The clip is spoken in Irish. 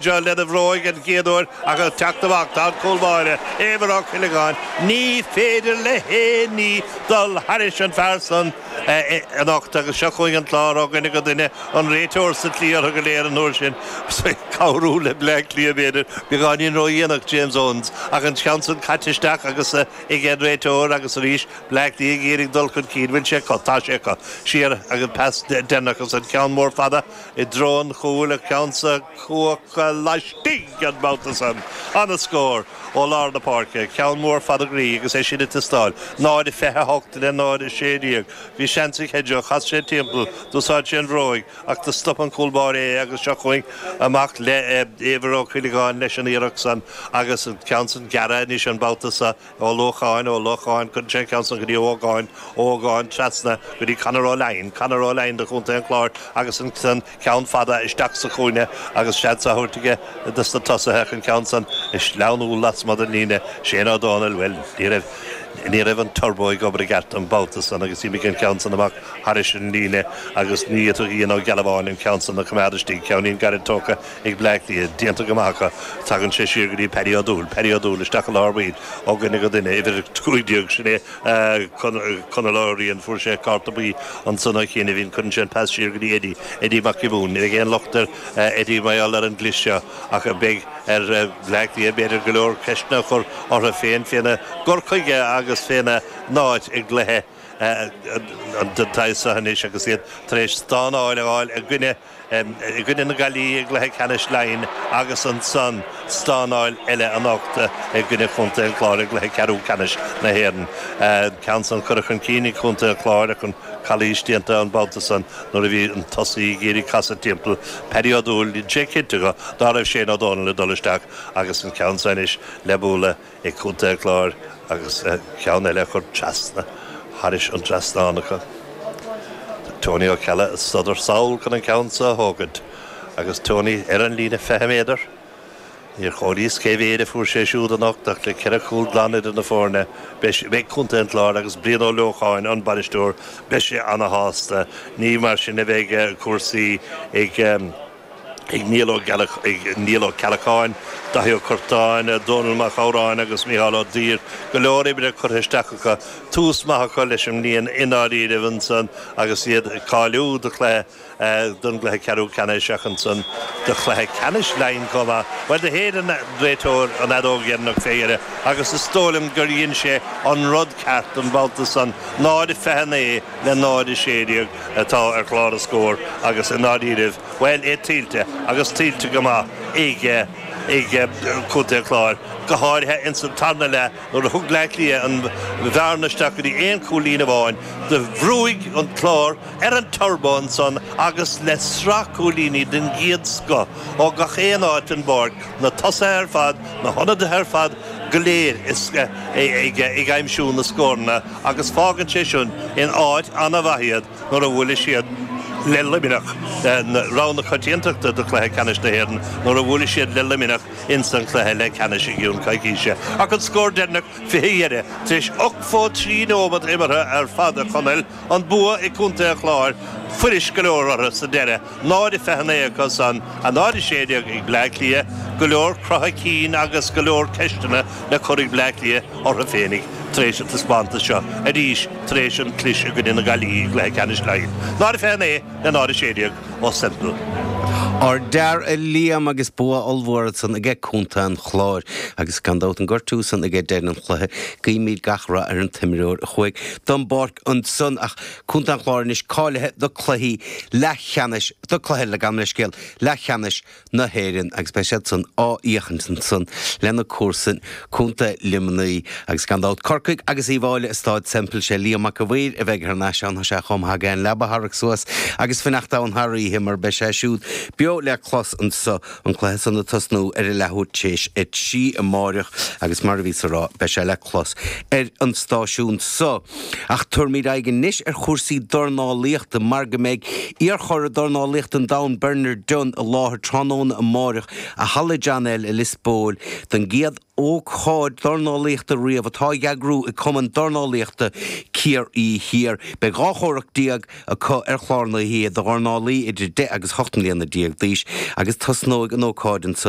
John lena bhróig an chéad uair ach ag teacht amach tá an cúl báire, Éibhear Ó Cuileagáin, Ní féidir le haon ní dul thairis an fear san anocht agus seo chugainn an Clár ó dhuine go duine, an réiteoir sa tslí orthu go léir an uair sin, ag cabhrú le Bleá Cliath b'fhéidir, beagáinín ró-dhéanach James Owens ach an ceann san caite isteach agus aige an réiteoir agus arís Bleá Cliath ag iarraidh dul chun cinn, bhfuil sé acu, tá sé acu, siar agus pas deireanach agus an ceann mór fada, I dtreo an chúil, an ceann san cuachta laistigh an babhta san. Ana-scór ó lár na páirce, ceann mór fada groí agus é sin ag teastáil. 0, 28 le 0, 16. Bhí seans ag Hedgo, chas sé timpeall, d'úsáid sé an bhróig ach do stop an cúl báire é agus seo chugainn amach le Éibhear Ó Cuileagáin leis an iarracht san agus an ceann san gearrtha anois an babhta so Ó Leocháin, Ó Leocháin, cuireann sé an ceann san go dtí Ó hÓgáin, Ó hÓgáin, trasna go dtí Conor Ó Laighin, Conor Ó Laighin, de Chontae an Chláir agus an ceann fada isteach sa chúinne agus seans á thabhairt aige do na tosaithe ach an ceann san ag sleamhnú lasmuigh den líne. Shane Ó Domhnaill, bhuel, ní raibh, ní raibh an turbo ag obair i gceart an babhta san agus d'imigh an ceann san amach thairis an líne agus ní fhéadfadh Ian Ó Gealbháin an ceann san a choimeád istigh. Ceannín gairid tógtha. ag Bleá Cliath déanta go maith acu, tagann sé siar go dtí Paddy Ó Dúill, Paddy Ó Dúill isteach i lár baill, ó dhuine go duine, uimhir a cúig déag, sin é Conall Ó Riain, fuair sé cárta buí ansan ó chianaibhín, cuireann sé an pas siar go dtí Eddie, Eddie Mac Giobúin, ní bheidh aon locht ar Eddie mar gheall ar an gclis seo ach beidh ar Bleá Cliath b'fhéidir go leor ceisteanna a chur orthu féin féna gcur chuige agus féna n-áit i gcluiche den tsaghas seo anois agus iad tar éis stánáil a fháil i gcoinne i gcoinne na Gaillimhe i gcluiche ceannais Laighin agus ansan stánáil eile anocht i gcoinne Chontae an Chláir i gcluiche ceathrú ceannais na hÉireann. Ceann san curtha chun cinn ag Contae an Chláir ach an calaois déanta an babhta san nuair a bhí an tosaí ag iarraidh casadh timpeall Paddy Ó Dúill, dhein sé cinnte ná raibh Shane Ó Dónaill ag dul isteach agus an ceann san anois le bualadh. ag Contae an Chláir agus ceann eile a chur trasna thairis an trasnán acu. Tony Ó Ceallaigh ag sodar sall chun an ceann seo a thógaint agus Tony ar an líne fiche méadar. Níor chomhairíos cé mhéid a fuair sé siúd anocht ach le ceithre chúl glan idir na foirne beidh Contae an Chláir agus Brian Ó Leocháin, an bainisteoir, beidh sé ana shásta. Ní mar sin a bheidh cúrsaí ag. ag Niall Ó Ceallacháin, Daithí Ó Curtáin, Dónall Mag Shamhráin agus Micheál Ó Duibhir, go leor oibre curtha isteach acu, tús maith acu leis an mbliain i ndáiríribh ansan agus iad ag cáiliú do chluiche, don gcluiche ceathrú ceannais ach ansan do chluiche ceannais Laighin chomh maith. Bhuel do shéid an réiteoir an fheadóg dheireanach fé dheireadh agus is dóigh liom gur dhein sé an rud ceart an babhta san, 0:29. le 0-16 atá ar chlár an scóir agus i ndáiríribh, bhuel, é tuillte agus tuillte go maith aige Contae an Chláir, go háirithe ins an tarna leath nuair a thug Bleá Cliath an bhearna isteach go dtí aon cúilín amháin. Do bhrúigh an Clár ar an turbo ansan agus le sraith cúilíní den gcéad scoth ó gach aon áit den bpáirc, na tosaithe ar fad, na hionadaithe ar fad go léir ag aimsiú na scóranna, agus fágann sé sin in áit an-mhaith iad nuair a bhuailfidh siad le Luimneach rogha na coitiantachta do Chluiche Ceannais na hÉireann nuair a bhuailfidh siad le Luimneach ins an chluiche leathcheannais i gcionn coicíse ach an scór deireanach fé dheireadh tar éis 83 nóiméad imeartha ar fad a Chonaill an bua aige Contae an Chláir fuirist go leor orthu sa deireadh Náid a fiche naoi acusan, a náid a sé déag ag Bleá Cliath, go leor croitheadh cinn agus go leor ceisteanna le cur ag Bleá Cliath orthu féinig tar éis an taispeántas seo, arís tar éis an cliseadh i gcoinne na Gaillimhe i gcluiche ceannais Laighean. Náid a fiche naoi le náid a sé déag ó Semple. Ardfhear a Liam agus bua ollmhór san aige Contae an Chláir agus gan dabht an gortú san aige deireadh an chluiche. Guímid gach rath ar an t-imreoir a chuaigh don bpáirc ansan ach. Contae an Chláir anois cáilithe do chluichí leathcheannais do chluiche le gabh mo leithscéal leathcheannais na hÉireann agus beidh siad san á fhéachaint ansan lena gcomharsain Contae Luimnigh agus gan dabht Corcaigh agus Uíbh Fhailí i Stáid Semple sé Liam Mac a' Mhaoir a bheidh thar n-ais ann tá sé chomh maith aige an leaba a tharrac suas agus fanacht ann thar oíche mar beidh sé siúd beo le clos anso an cluiche san ag tosnú ar a leathuair théis a trí amáireach agus mar a bhíos ag rá beidh sé le clos ar an stáisiún so. Ach tabharfaimid aghaidh anois ar chúrsaí dornálaíochta mar go mbeidh iar-churadh dornálaíochta an domhain Bernard Dunne i láthair tráthnóna amáireach i Halla John L. i Lios Póil don gcéad Ócáid dornálaíochta riamh atá á heagrú ag Cumann Dornálaíochta Ciarraí Thiar. Beidh dhá chomhrac déag acu ar chlár na hoíche do dhornálaí idir deich agus hocht mbliana déag d'aois agus tosnóidh an ócáid ansan